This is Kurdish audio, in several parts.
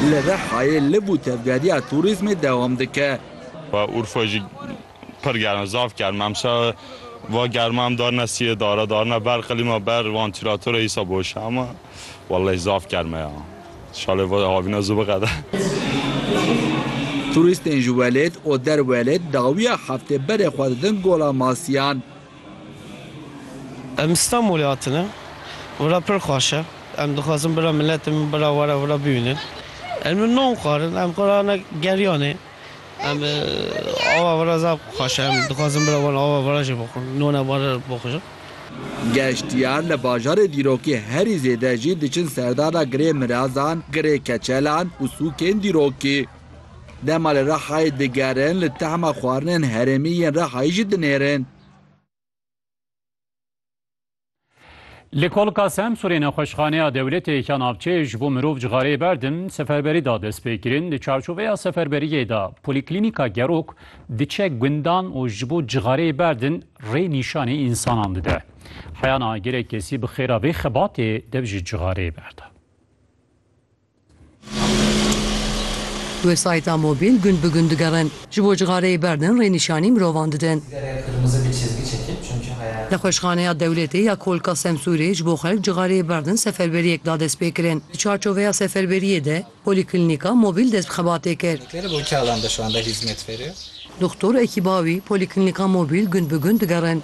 Li Rihayê liv û tevgeriya tûrîzmê dewam dike. Ve Urfa jî pir germ e, zaf germ e. Emşa va germa em darine siyê dara, darine ber qilîma, ber vantîlatora îsa boş e ama wellehî zaf germ e ya. Şalê va havîna zû biqede. Tûrîstên ji welêt û derwelêt dawiya heftê berê xwe didin Gola Masiyan. Em li Stenbolê hatine, vira pir xweş e. Em dixwazin bira miletê min bira were vira bibînin. Em li Nom xwarin, em xwe rane Geryanê. Em ava vira zaf xweş e. Em dixwazin bira wan ava vira jî bixwin, nona were bixwin. Geştyar li bajarê dîrokê herî zêde jî diçin serdana girê mirazan, girê keçelan û sûkên dîrokê. Dema li Rihayê digerin li tehma xwarinên herêmî yên Rihayê jî dinêrin. Li Kolka Semsûrê nexweşxaneya dewletê ya navçeyê ji bo mirov cixareyê berdin seferberî da destpêkirin. Di çarçoveya seferberiyê de Polîklînîka Gerok diçe gundan û ji bo cixareyê berdin rê nîşanî însanan dide. Heyana gelek kesî bi xêra vê xebatê dev ji cixareyê berda. Websayta mobîl gund bi gund digerin. Ji bo cixareyê berdin rênîşanî mirovan didin. Nexweşxaneya Dewletê ya Kolka Semsûrê ji bo xelk cixareyê berdin seferberiyek da destpêkirin. Di çarçoveya seferberiyê de Polîklînîka Mobîl dest bi xebatê kir. Doxtor ekîba wî Polîklînîka Mobîl gund bi gund digerin.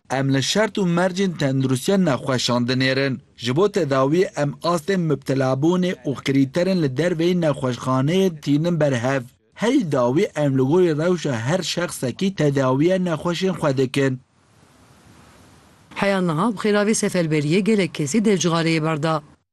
Em li şert û mercên tenduristiya nexweşan dinêrin. Ji bo tedawiyê em astên mubtelabûnê û krîterên li derveyî nexweşxaneyê tînin ber hev. Herî dawî em li gorî rewşa her şexsekî tedawiya nexweşên xwe dikin. Heya niha bi xêra vê seferberiyê gelek kesî dev cixareyê berda.